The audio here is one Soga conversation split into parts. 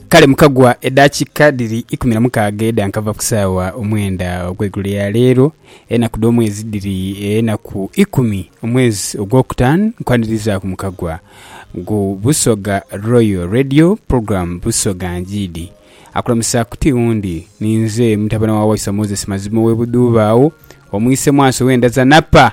kale mukagwa edakika dhiri ikumi na mukaaga edhankava ku saawa omwenda ogweigulo ya leero enaku dh'omwezi dhiri enaku ikumi omwezi ogwokutaanu nkwanirizaaku mukagwa gu busoga royal radio program busoga njiidi akulamusaaku ti wundi ninze mutabane wa waiswa moses mazima ow'e budhuuba agho omwise mwaso w'enda za napa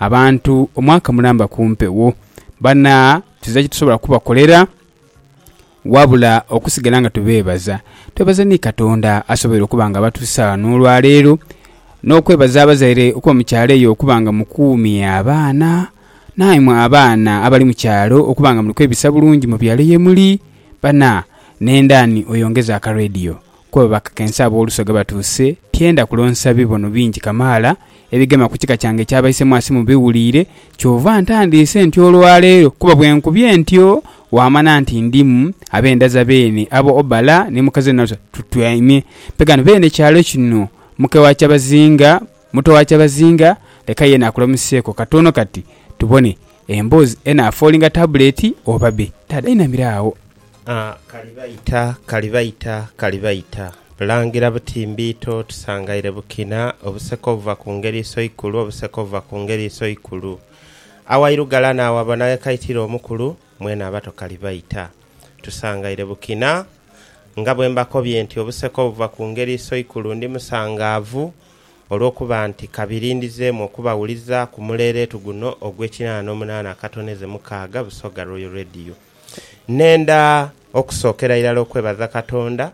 abantu omwaka mulamba ku mpewo. Bana tuziza kyetusobola kubakolera wabula okusigala nga tubeebaza. Twebaza ni Katonda asoboire okuba nga abatuusa ghano olwaleero, n'okwebaza abazaire okuba mu kyalo eyo okuba nga mukuumye abaana. Naimwe abaana abali mu kyalo okuba nga muli kwebisa bulungi mu byalo ye muli. Bana, nenda ni oyongeze aka radio Ku abo abakakensa ab'oluso ghe batuuse, tyenda kulonsa bibono bingi kamaala ebigema ku kika kyange eky'Abaisemwasi mubiwuliire, kyova ntandiise ntyo olwa leero, kuba bwe nkubye ntyo waamana nti ndimu ab'endaza beene abo Obala ni mukazi we Nalusa tutyaime. Pe ghano beene kyalo kino, muke wa kyabazinga, muto wa kyabazinga, leka yeena akulamuseeko katono kati tubone emboozi enaafoolinga tabuleeti oba be. Taata yainamira agho. Kalibaita, Kalibaita, Kalibaita, bulangira buti mbiito tusangaire bukina, obuseka obuva ku ngeri isoikulu, obuseka obuva ku ngeri isoikulu. Awairugala n'awabona ghekaitira omukulu, mwene abato Kalibaita. Tusangaire bukina. Nga bwe mbakobye nti obuseka obuva ku ngeri isoikulu ndi musangaavu olw'okuba nti kabiri ndizeemu okubawuliza ku muleeleetu guno ogw'ekinaana n'omunaana akatoneze mukaaga Busoga Royal Radio. Nenda okusookera irala okwebaza Katonda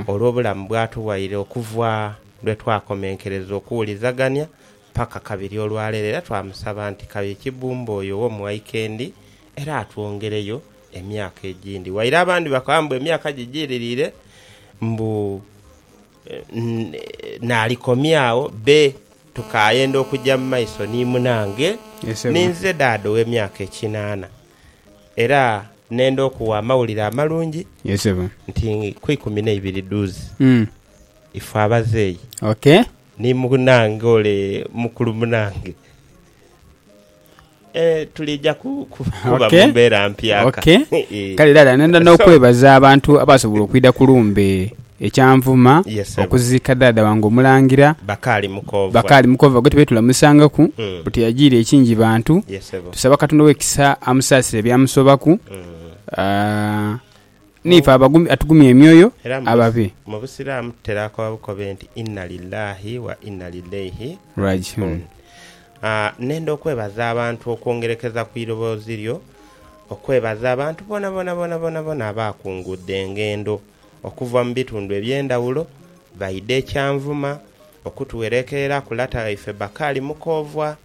olw'obulamu bw'atughaire okuva lwe twakomenkereza okuwulizagania paka kabiri olwaleero, era twamusaba nti kaye Kibumba oyo ow'omughaika endi era atwongereyo emyaka egindi. Waire abandi bakoba mbu emyaka gijiririre mbu naalikomya agho, bbe tukaayenda okuja mu maiso ni munange. Ninze daada ow'emyaka ekinaana. Era nenda okuwa amawulire amalungi nti ku ikumi n'eibiri dhuuzi ifwe abazeeyi ni munaange ole mukulu munaange tulija kuba mu mbeera mpyaka. Kale era nenda n'okwebaza abantu abaasobola okwidha ku lumbe. Ekyanvuma okuziika dhaadha wange Omulangira Bakaali Mukoova gwe tubaire tulamusangaku bwe tuyajiire e Kingibantu. Tusaba Katonda ow'ekisa amusaasire ebyamusobaku n'ife abagumye atugumye emyoyo ababe. Era mu Busiraamu tutera koba bukobe nti Inna Lillaahi wa Inna Lillaihi Raaji'uun. Nenda okwebaza abantu okwongerekeza ku iroboozi lyo, okwebaza abantu boonaboona boonaboona abaakunguudde engendo. okuva mu bitundu eby'endhawulo baidha e Kyanvuma okutuwereekereraku lata waife Bakari Mukoovwa,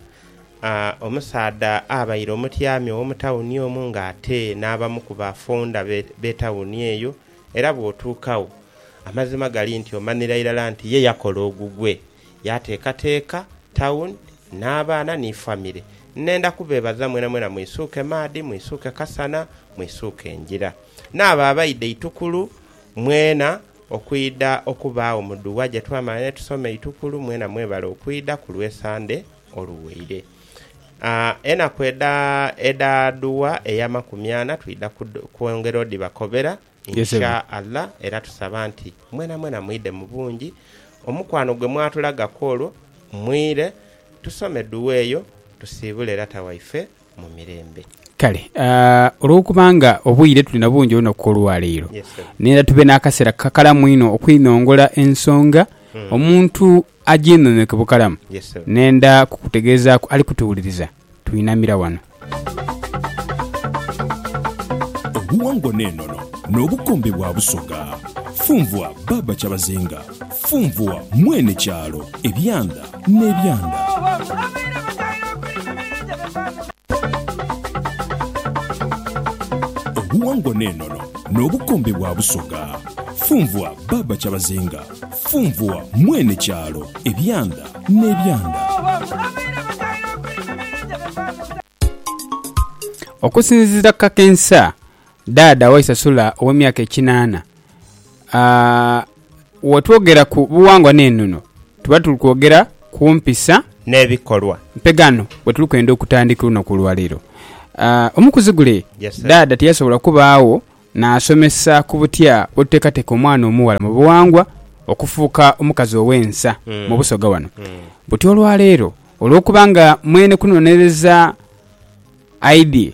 omusaadha abaire omutyami ow'omu tawuni omwo nga ate n'abamu ku ba founda b'etawuni eyo era bw'otuukagho amazima gali nti omanhira irala nti ye yakola ogugwe yaateekateeka tawuni n'abaana ni famire. Nnhenda kubeebaza mwenamwena mwisuuke maadhi, mwisuuke kasana, mwisuuke ngira. N'abo abaidha eitukulu mwena okwidha okubaagho mu dua gye twamala ni tusoma eitukulu, mwena mwebale okwidha ku lw'Esande oluwaire. Enaku edha edha dua ey'amakumi ana twidha kwongera odhibakobera In Sha Allah era tusaba nti mwena mwena mwidhe mu bungi omukwano gwe mwatulagaku olwo mwire tusome dua eyo tusiibule lata waife mu mirembe. Kale olwokubanga obwire tuli nabungi olunaku olwaleero, neera tube n'akaseera kakalamu inho okwinhongola ensonga, omuntu agyinhonhoke bukalamu, nenda kukutegeezaaku ali kutuwuliriza twinamira wano. Obuwangwa n'enono n'obukombe bwa Busoga. Funvwa Baaba Kyabazinga. Funvua mwene kyalo ebyanda n'ebyanda. Obuwangwa n'enono n'obukombe bwa Busoga. Funvua Baaba Kyabazinga. Funvua mwene kyalo ebyanda n'ebyanda. Okusinzira ku kakensa Dada waise Sula ow'emyaka ekinaana. Wetwogera ku buwangwa n'enono tuba tuli kwogera ku mpisa. N'ebikolwa. Mpegaano bwe tuli kwenda okutandika olunaku olwaleero. Omu ku zigule Dada tiyasobola kubaagho naasomesa ku butya bwe tuteekateeka omwana omughala mu buwangwa okufuuka omukazi ow'ensa mu Busoga wano. Buti olwaleero olw'okuba nga mwene kunonereza aidye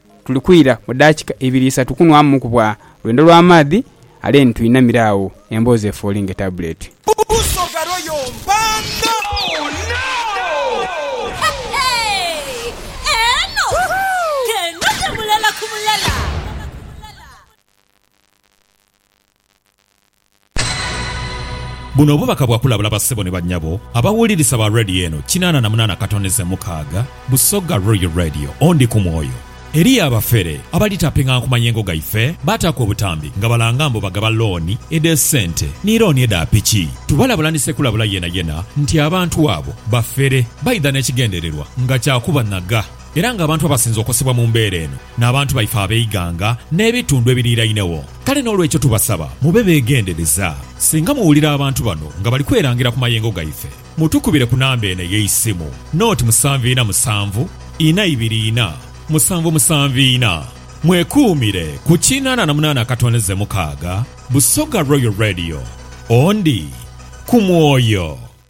Tuli kwira mu daakika ibiri isatu kunwaamu ku bwa lwendo lwa maadhi ale ni twinamira agho emboozi efooli ng'etabuleeti. Busoga Royal Mpanda. Buno obubaka bwa kulabula bassebo ni bannyabo abawulirisa ba Radio eno kinaana na munaana katoneze mukaaga, Busoga Royal Radio, Ondi ku mwoyo. Eriyo abafere abali taping'anku mayengo gaife, baataaku obutambi nga balanga mbu bagaba looni edh'esente ni looni edha piki. Tubalabula ni ssekulabula yenayena nti abantu abo bafere baidha n'ekigendererwa nga kya kubanaga era ng'abantu abasinze okosebwa mu mbeera eno n'abantu baife ab'eighanga n'ebitundhu ebiriirainegho. Kale n'olwekyo tubasaba mube beegendereza singa muwulira abantu bano nga bali kwerangira ku mayengo gaife, mutukubire ku namba eno ey'eisimu, Naught musanvu ina musanvu ina ibiri ina musanvu musanvu ina. Mwekuumire ku kinaana na munaana akatondeze mukaaga. Busoga Royal Radio, Ondi ku mwoyo.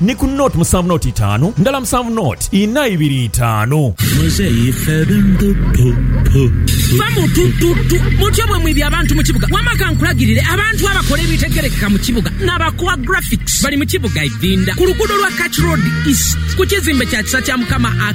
Ni ku nought musanvu nought itaanu ndala musanvu nought inha ibiri itaanu. Muzeeyi Febe mbu pu pu pu. Fa mu tu tu tu. Mutyo bwe mwibye abantu mu kibuga. Wama ka nkulagirire, abantu abakola ebitegerekeka mu kibuga n'abakoa graphics bali mu kibuga Idhinda ku luguudo lwa Kach Road East ku kizimbe kya Kisa kya Mukama a.